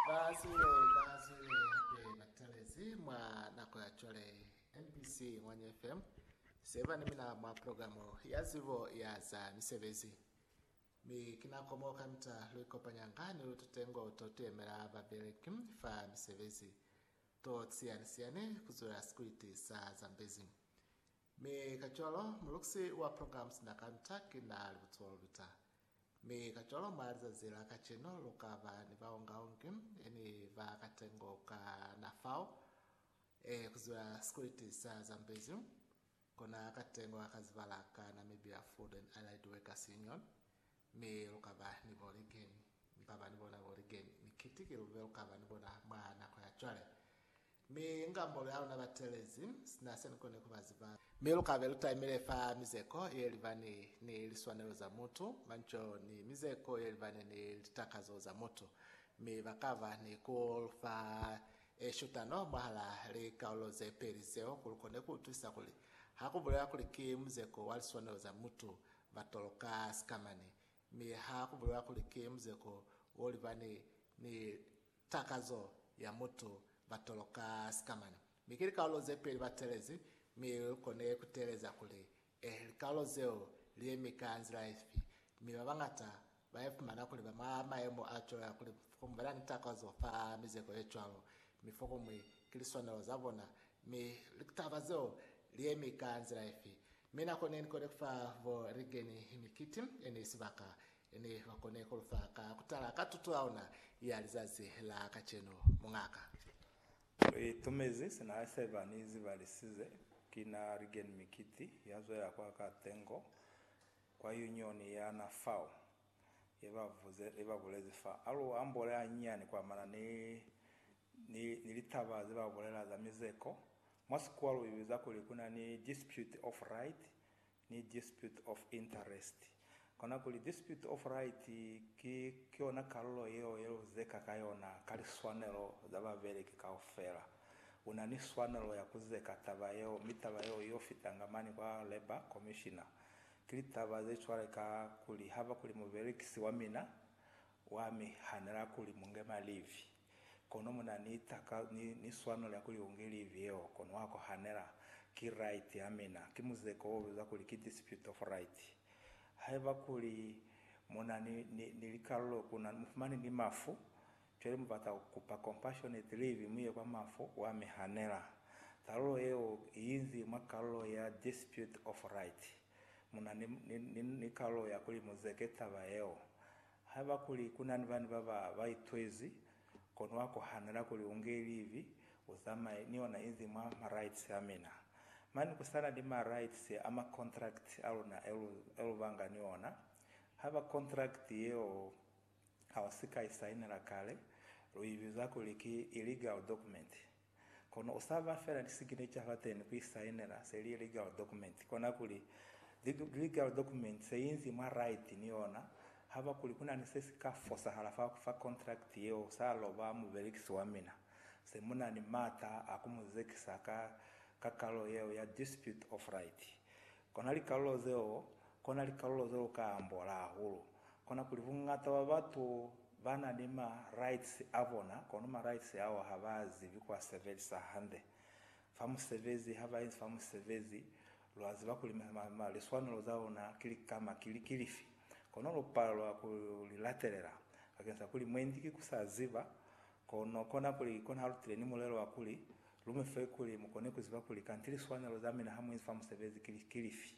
Ba siwe ba siwe hape ba talezi mwa nako ya cwale MBC Ngwanya FM se ba ni mina mwa programo ya zibo ya za misebezi. Mi ki nako mo kamita lu ikopanyanga ni lututengo to tuyemela babeleki fa misebezi to siyanisiani kuzula sikwiti sa Zambezi. Mi kacwalo, mulukisi wa programs na ka Ntaki na li butulo luta. Mi kacwalo, mwa lizazi la kacenu, lu ka ba ni baungaungi e ni ba katengo ka na fao, e ku ziba sikuliti sa Zambezi, kona katengo ka kazibala ka Namibia Food and Allied Workers Union, mi lu ka ba ni bo ligeni. Mi ba ba ni bona bo ligeni. Mi kiti ki lube lu ka ba ni bona mwa nako ya cwale. Mi inga molu ya luna batelezi sina se nikone kuba ziba. Mi lukabe lutaimile fa mizeko yelibani ni liswanelo za mutu, manco, ni mizeko yelibani ni litakazo za mutu. Mi bakaba ni kulufa eshutano mwahala likaulo zepeli zeo kuli lukone kuutwisa kuli hakubulewa kuli ki muzeko wa liswanelo za mutu batoloka sikamani, mi hakubulewa kuli ki muzeko wolibani ni Takazo ya mutu ba toloka sikamana, mi ki likaulo ze peli ba teelezi, mi lu kone ku teeleza kuli, Eh, likaulo zeo li yemi ka nzila ifi? Mi ba bañata ba ifumana kuli ba mwa mayemo a cwalo ya kuli fokuñwi ba na ni takazo fa mizeko ye cwalo, mi fokuñwi ki liswanelo za bona. Mi litaba zeo li yemi ka nzila ifi? Mi nako ne ni kone ku fa bo Reagan mikiti ye ne sibaka, Ne ba kone ku lu fa ka ku tala ka tuto ya ona ya lizazi la kacenu, muñaka. Lu itumezi sina ha se ba ni zibalisize. Ki na Rigen Mikiti, ya zwela kwa ka tengo kwa Yunioni ya na fao, ye ba vuze, ye ba bulezi fa, A lu ambole hanyinyani ku amana ni, ni, ni litaba ze ba bulela za mizeko. Mwa Sikuwa lu ibiza kuli ku na ni dispute of right, ni dispute of interest, kona kuli dispute of right, ki yona kalulo yeo ye lu zeka ka yona ka liswanelo za babeleki kaufela. U na ni swanelo ya ku zeka taba yeo, mi taba yeo i yo fitanga mane kwa labour commissioner. Ki litaba ze cwale ka kuli haba kuli mubelekisi wa mina wa mi hanela kuli mu nge malivi. Kono mu na ni taka, ni, ni swano lya kuli u nge livi yeo, kono wa kohanela. Ki right ya mina. Ki muzeko wo bizwa kuli ki dispute of right. Haiba kuli mu na ni, ni, ni likalulo ku na, mu fumani ni mafu, cwale mu bata ku kupa compassionate leave mu ye kwa mafu, wa mi hanela. Talulo yeo i inzi mwa kalulo ya dispute of right. Mu na ni, ni, ni, ni kalulo ya kuli mu zeke taba yeo. Haiba kuli ku na ni bani ba ba ba itwezi, kono wa kohanela kuli u nge livi, u zamaye ni ona inzi mwa ma rights a mina. Mane ku sa na ni ma rights a ma contract a luna e lu, e lu banga ni ona. Haiba contract yeo ha u si ka i sainela kale, lu i biza kuli ki illegal document. Kono u sa ba fela lisignecha fateni ku isainela se li ye legal document. Kona kuli, legal document se inzi mwa right ni yona, haba kuli ku na ni se si ka fosahala fa ku fa contract yeo sa lo ba mubelekisi wa mina, se mu na ni m'ata a ku mu zekisa ka kakalo yeo ya dispute of right. Kona likalulo zeo, kona likalulo ze lu ka ambola hahulu, kona kuli bungata bwa batu ba na ni ma rights a bona, kono ma rights ao ha ba zibi ku a sebelisa hande. Fa musebezi, ha ba inzi fa musebezi, lwa ziba kuli liswanelo za luna ki likama ki li, ki lifi, kono lu palelwa ku li latelela, bakeng sa kuli mwendi ki ku sa ziba Kono kona kuli, kona halutile ni mulelo wa kuli, lu mi fe kuli mu kone ku ziba kuli kanti liswanelo za mina ha mu inzi fa musebezi ki, ki lifi.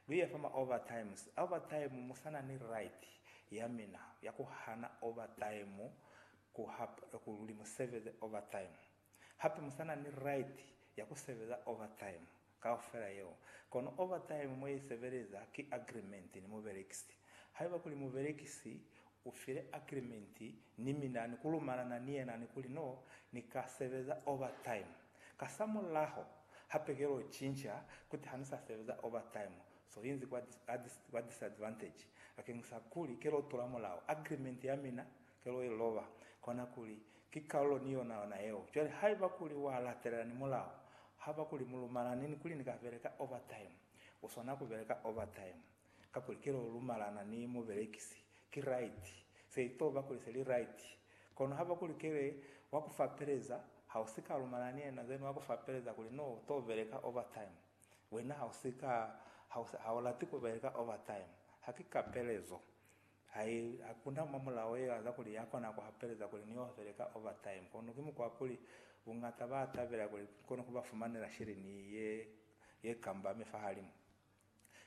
Lu iya fa ma overtimes. Overtime, mu sa na ni right ya mina ya ku hana overtime ku ha, kuli mu sebeze overtime. Hape mu sa na ni right ya ku sebeza overtime. Kaufela yeo. Kono overtime mo i sebeleza ki agreement ni mubelekisi. Haiba kuli mubelekisi u file agreement ni mina ni ku lumalana ni yena ni kuli no ni ka sebeza overtime, kasamulaho ha pekelo u cinca kuti ha ni sa sebeza overtime, so inzi kwa kwa disadvantage bakeñisa kuli ke lo tula mulao, agreement ya mina ke lo i loba, kona kuli Ki kalulo ni yona yona yeo. Cwale haiba kuli wa latelela ni mulao, haba kuli mu lumalani ni kuli ni ka beleka overtime, u swana ku beleka overtime, kakuli ki lo lumalana ni mubelekisi. Ki right. Se i to ba kuli se li right. Kono haba kuli kele wa ku fapeleza, ha u si ka lumalana ni yena, then wa ku fapeleza kuli no u to beleka overtime. Wena ha u si ka, ha u, ha u lati ku beleka overtime. Ha ki kapelezo. Hai, hakuna mwa mulao ye aza kuli ya kona ku hapeleza kuli ni ofele ka overtime, kono ki mukwa wa kuli buñata ba tabela kuli ni kone ku ba fumanela shilini ye, ye kambame fahalimu.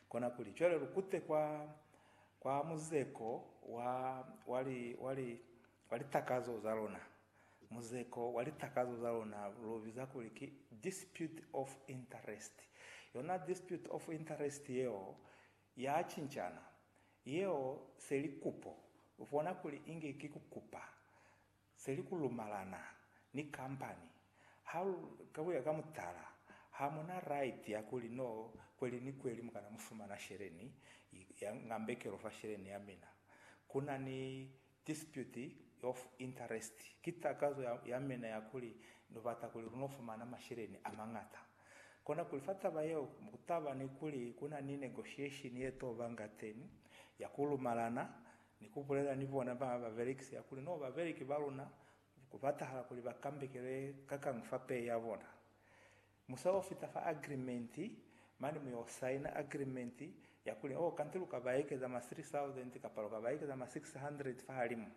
Kona kuli, cwale lu kute kwa, kwa muzeko wa, wa li, wa li, wa litakazo za luna, muzeko wa litakazo za luna lu biza kuli ki dispute of interest. Yona dispute of interest yeo Ya cincana. Yeo se li kupo. U bona kuli inge ki ku kupa. Se li ku lumalana ni kampani. Ha, ka ku ya ka mutala, ha mu na right ya kuli, No, kweli ni kweli mu kana mu fumana sheleni ya ngambekelo fa sheleni ya mina. Ku na ni Dispute of interest ki takazo ya, ya mina ya kuli no bata kuli lu no fumana masheleni a mañata. Kona kuli fa taba yeo ku taba ni kuli ku na ni negotiation ye to ba ngateni, ya ku lumalana ni ku bulela ni bona ba ba belekisi ya kuli no ba beleki ba luna ku batahala kuli ba kambekele kakañwi fa pay ya bona. Musa o fita fa agreement, mane mu yo saina agreement ya kuli, oh, kanti lu ka ba ekeza ma 3,000 kapa lu ka ba ekeza ma 600 fahalimu.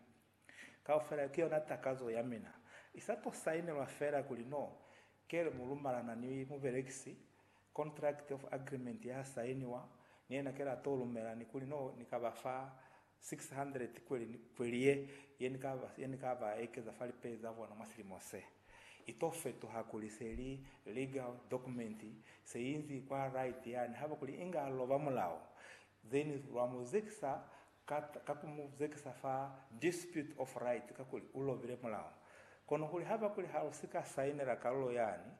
Kaufela yo ki yona takazo ya mina. I sa to sainelwa fela kuli, no, kele mu lumalana ni mubelekisi, contract of agreement ya sainiwa, ni yena kele a to lumela, ni kuli, no, ni ka ba fa 600 kweli ni kweli ye ye ni ka ba, ye ni ka ba ekeza fa lipei za bona mwa silimo se. I to fetuha kuli se li legal document, se inzi kwa right yani haba kuli inga loba mulao. Then lwa mu zekisa ka, ka ku mu zekisa fa dispute of right, kakuli u lobile mulao. Kono kuli haba kuli ha lu si ka sainela kalulo yani,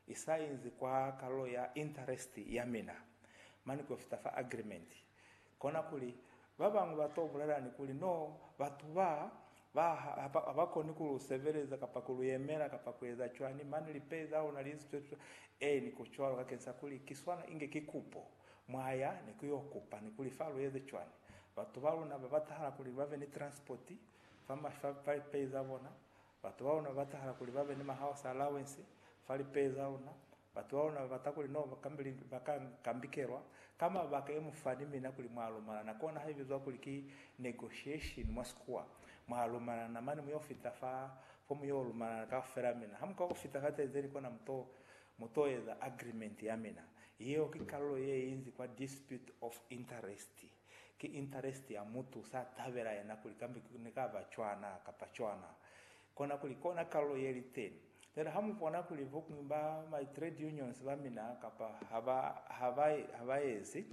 I sa inzi kwa kalulo ya interest ya mina, mane ku yo fita fa agreement. Kona kuli, ba bañwi ba to bulela ni kuli, No, batu ba, ba ha, ha ba koni ku lu sebeleza, kapa ku lu yemela, kapa ku eza cwani, mane lipei za luna li zitwe fita. Ee, ni ku cwalo, kakeni sa kuli, ki swana inge ki kupo. Mwa ya ni ku yo kupa, ni kuli, Fa lu eze cwani? Batu ba luna ba batahala kuli ba be ni transport fa, fa, fa lipei za bona, Batu ba luna ba tahala kuli ba be ni mahouse allowance fa lipeye za luna. Batu ba luna ba bata kuli no ba ka kambikelwa ka mabaka e mu fa ni mina kuli mwa lumana na kona ha i bizwa kuli ki negotiation mwa Sikhuwa. Mwa lumana na mane mu yo fita fa fo mu yo lumana na kaufela mina. Ha mu ka ku fita fa tenzeni kona mu to mu to eza agreement ya mina. Yeo ki kalulo ye inzi kwa dispute of interest. Ki interest ya mutu sa tabela yena kuli kambe ne ka ba cwana kapa cwana. Kona kuli kona kalulo ye li teni. Jwale ha mu bona kuli bokuñwi ba my trade unions ba mina kapa ha ba, ha ba, ha ba ezi,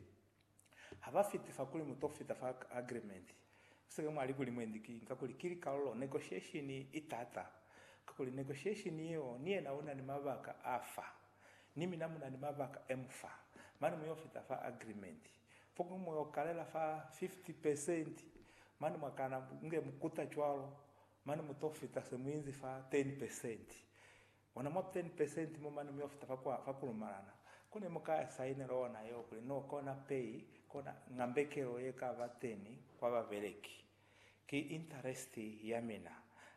ha ba fiti fa kuli mu to fita fa agreement. Mu sike mwa li kuli mwendi ki, ka kuli ki likalulo, negotiation i tata. Ka kuli negotiation yeo, ni yena u na ni mabaka a fa, ni mina mu na ni mabaka e mu fa. Mane mu yo fita fa agreement. Fokuñwi mu yo kalela fa 50%, mane mwa kana nge mu kuta cwalo, mane mu to fita se mu inzi fa 10%. Ona mwa 10% mo mane mu yo fita fa kwa, fa ku lumalana. Ko ne mu ka ya saine lona yeo kuli no kona pay, kona ngambekelo ye ka ba teni kwa babeleki. Ki interest ya mina.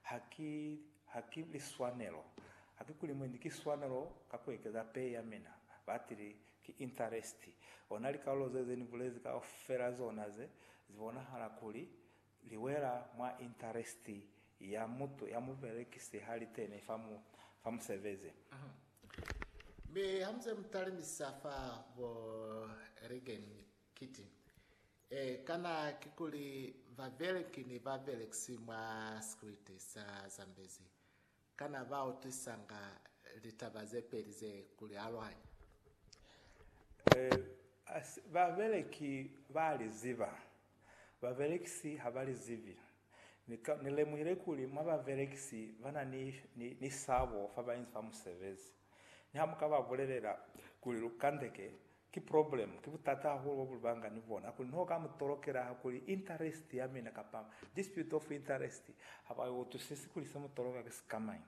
Ha ki, ha ki liswanelo. Ha ki kuli mwendi ki swanelo ka ku ekeza pay ya mina. Batili, ki interest. Ona likalulo zeze ni bulezi kaufela zona ze, zi bonahala kuli li wela mwa interest ya mutu, ya mubelekisi ha li kene fa mu, fa musebezi. Mi ha mu ze mu talimisa fa bo Reagan Kiti, Ee, kana kikuli babeleki ni babelekisi mwa sikriti sa Zambezi kana ba utwisanga litaba ze peli ze ku li aluhanya? Ee, babeleki ba li ziba. Babelekisi ha ba li zibi. Ni ka, ni lemuhile kuli mwa babelekisi ba na ni, ni, ni sabo fa ba inzi ba musebezi. Niha mu ka ba bulelela kuli lu kandeke Ki problem, ki butata hahulu bo bulibanga ni bona, hakuli niho ka mutolokela hakuli interest ya mina kapa dispute of interest haba i utwisisi kuli se mutoloka ki sikamañi.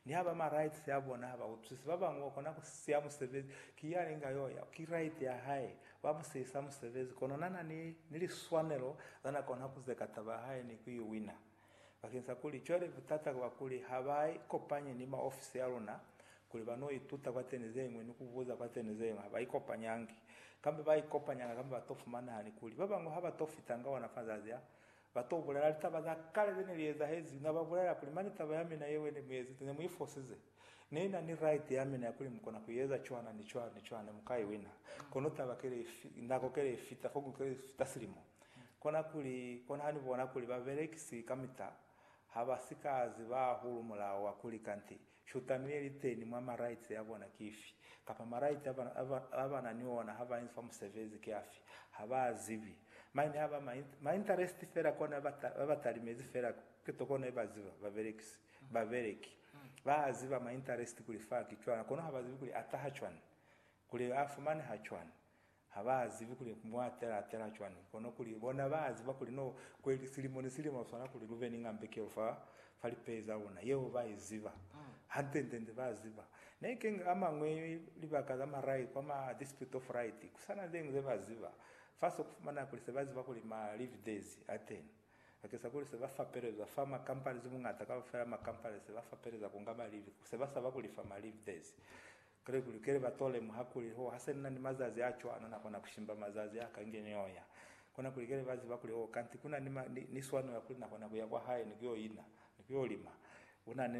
Niha ba ma rights a bona haba utwisisi, ba bañwi ba kona ku siya musebezi, ki yani inga yo ya, ki right ya hae, ba mu siyisa musebezi, kono na na ni, ni liswanelo za na kona ku zeka taba ya hae ni ku i wina. Bakeng sa kuli cwale butata ku ba kuli ha ba ikopanye ni maofisi a luna kuli ba no ituta kwateni zeñwi ni ku buza kwateni zeñwi, ha ba ikopanyangi. Kambe ba ikopanyanga kambe ba to fumana hani kuli ba bañwi ha ba to fitanga ona mazazi a, ba to bulela litaba za kale ze ne li ezahezi. Na ba bulela kuli, Mane taba ya mina yeo ye ne mu iezezi, ne mu i fosize. Nina ni right yamina ya kuli mukona kueza cwana ni cwana ni cwana, mukai wina. Kono taba kile ifi, nako kile ifita, foku kile ifita silimo. Kona kuli, kona hani bona kuli babelekisi kamita habasika ziba hahulu mulao wa kuli kanti shutano ye liteni mwa ma rights ya bona ki ifi, kapa ma right a bana ni ona ha ba inzi fa musebezi ki afi. Haba zibi. Maine haba ma interest fela kona ba batalimezi fela, ki to kona iba ziba, babelekisi. Babeleki ba ziba ma interest kuli fa ki cwana kono ha ba zibi kuli a taha cwani, kuli a fumaneha cwani. Ha ba zibi kuli mwa atela atela cwani kono kuli bona ba ziba kuli no kweli silimo ni silimo ha swana kuli lu be ni ngambekelo fa fa lipei za luna. Yeo ba i ziba. Hande nde nde ba ziba. Ne keng a mañwi libaka za marai kwa ma dispute of right ku sa na zeñwi ze ba ziba. Fa so ku fumaneha kuli se ba ziba kuli ma live days a teni. Bakesa kuli se ba fapelezwa fa ma companies bungata kaufela ma companies se ba fapeleza kunga ma leave, se ba saba kulifa ma leave days. Kale kulukele ba to lemuha kuli, oh, hase nina ni mazazi a cwana, na kona kushimba mazazi a ka nge ni yo ya. Kona kulukele ba ziba kuli, oh, kanti kuna ni ma, ni, ni swanela kuli na kona kuya kwa hae ni ku yo ina, ni ku yo lima. Una ni.